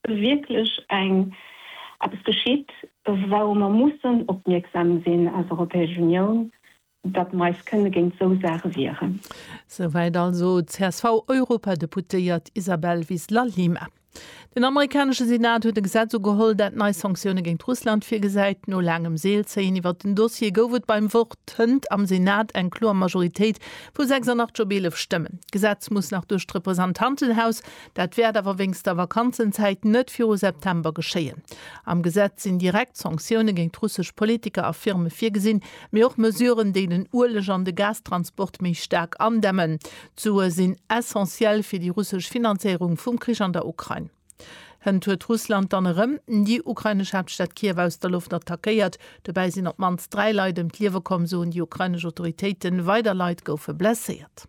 wierklech eng eppes geschitt, wourou mer mussen opmierksam sinn als Europäesch Unioun, datt mer eis kënne géint esou Saache wieren. Souwäit also d'CSV-Europadeputéiert Isabel Vizla-Lima. Den amerikanesche Senat huet e Gesetz ugeholl, dat nei Sanktioune géint Russland virgesäit. No laangem Seelzéien iwwert den Dossier gouf et beim Vott hënt am Senat eng kloer Majoritéit vu 86 op 11 Stëmmen. D'Gesetz muss nach duerch d'Representantenhaus Dat wäert awer wéinst der Vakanzenzäit net viru September geschéien. Am Gesetz sinn direkt Sanktioune géint russesch Politiker a Firme virgesinn, mee och Mesuren, déi den Ueleg an de Gastransport méi staark andämmen. D'Sue sinn essentiell fir déi russesch Finanzéierung vum Krich an der Ukrain. Hënt huet Russland dann erëm déi ukrainesch Haaptstad Kiew aus der Loft attackéiert. Dobäi sinn op d'mannst dräi Leit ëm d'Liewe komm, soen déi ukrainesch Autoritéiten. Weider Leit goufe blesséiert.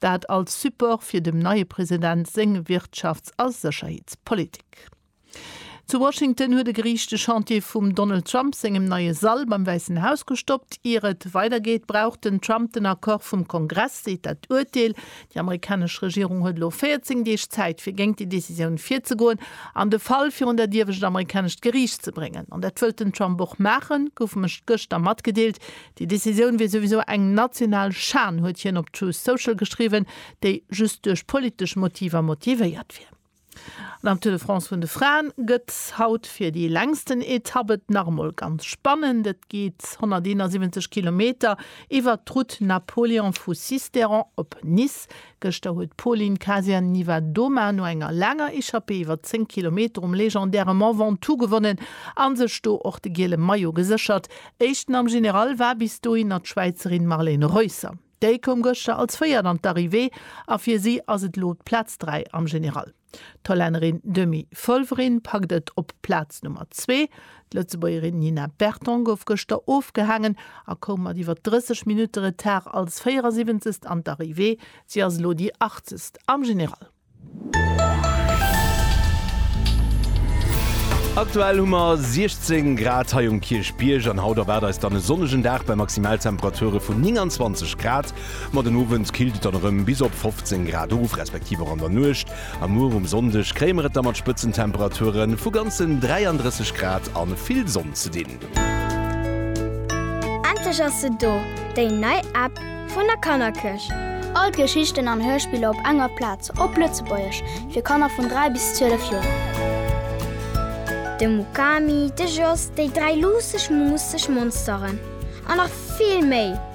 Dat als Support fir dem neie President seng Wirtschafts a Sécherheetspolitik. Zu Washington huet e Geriicht de Chantier vum Donald Trump sengem neie Sall beim Wäissen Haus gestoppt. Ier et weidergeet, brauch den Trump den Accord vum Kongress, seet dat Urteel. Déi amerikanesch Regierung huet elo 14 Deeg Zäit, fir géint déi Decisioun virzegoen an de Fall virun dat iewescht amerikanescht Geriicht ze bréngen. An dat wëllt den Trump och maachen, gouf gëschter matgedeelt. Déi Decisioun wier souwisou eng national Schan, huet hien op Truth Social geschriwwen, déi just duerch politesch Motiver motivéiert wier. An am Tour de France vun de Fraen gëtt haut fir déi längsten Etapp et nach emol ganz spannend. Et geet 171 Kilometer iwwert d'Route Napoléon vu Sisteron op Nice. Gëschter huet d'Pauline Kasia-Niewiadoma no enger laanger Echappée iwwer 10 Kilometer um legendäre Mont Ventoux gewonnen a sech do och de giele Maillot geséchert. Éischten am General war bis dohinner d'Schwäizerin Marlene Reusser. Déi koum gëschter als Véiert an d'Arrivée a fir si ass et elo d'Plaz 3 am General. D'Hollännerin Demi Follering packt et op Plaz Nummer zwee. D'Lëtzebuergerin Nina Berton gouf gëschter ofgehaangen a koum mat iwwer 30 Minutte Retard als 74. an d'Arrivée. Si ass elo déi Achtzegst am General. Aktuell hu mer 16 Grad hei um Kierchbierg an haut erwaart eis dann e sonnegen Dag bei Maximaltemperature vun 29 Grad. Ma den Owend killt et dann erëm bis op 15 Grad of, respektiv och an der Nuecht a muer um Sonndeg kréie mer et da mat Spëtzentemperature vu ganzen 33 Grad a vill Sonn ze dinn. Endlech ass se do, déi nei App vun der Kannerkierch! All d'Geschichten an Hörspiller op enger Plaz, op Lëtzebuergesch, fir Kanner vun 3 bis 12 Joer. De Mukami, de Jos, déi dräi luusseg, muusseg Monsteren a nach vill méi!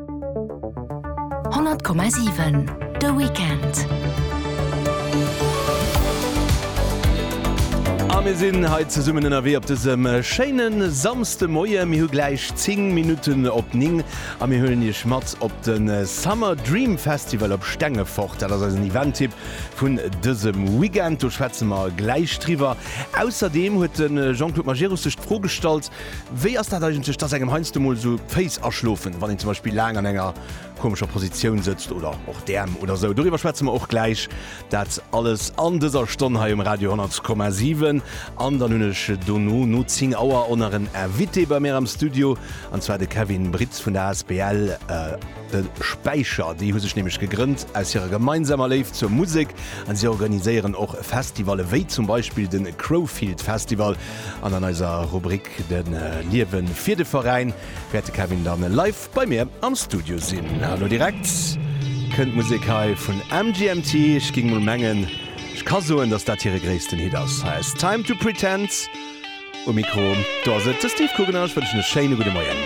100,7 de Weekend. A mir sinn hei zesummen ënnerwee op dësem schéine Samsdemoie. Mir hu gläich 10 Minutten op 9 a mir huelen Iech mat op de Summer Dream Festival op Stengefort. Dat ass eisen Event-Tipp vun dësem Weekend. Do schwätze mer gläich driwwer. Ausserdeem huet de Jean-Claude Majerus sech d'Fro gestallt, Wéi ass dat eigentlech, dass engem heiansdo mol esou d'Féiss aschlofen, wann een zum Beispill laang an enger komescher Positioun sëtzt oder och d'Äerm oder esou? Doriwwer schwätze mer och gläich. Dat alles an dëser Stonn hei um Radio 100,7. An dann hunn ech dono, no 10 Auer, och nach en Invité bei mir am Studio, an zwar de Kevin Britz vun der asbl De Späicher. Déi hu sech nämlech gegrënnt aus hirer gemeinsamer Léift zur Musek, a si organiséieren och Festivalle wéi zum Beispill de Crowfield Festival. An an eiser Rubrik De Liewen fir de Veräin wäert de Kevin dann live bei mir am Studio sinn. An lo direkt kënnt Musek hei vun MGMT. Ech géing mol mengen, ech ka soen, dass dat hire gréissten Hit ass. Hei ass Time to Pretend um Mikro. Do ass et de Steve Kugener. Ech wënschen e schéine gudde Moien.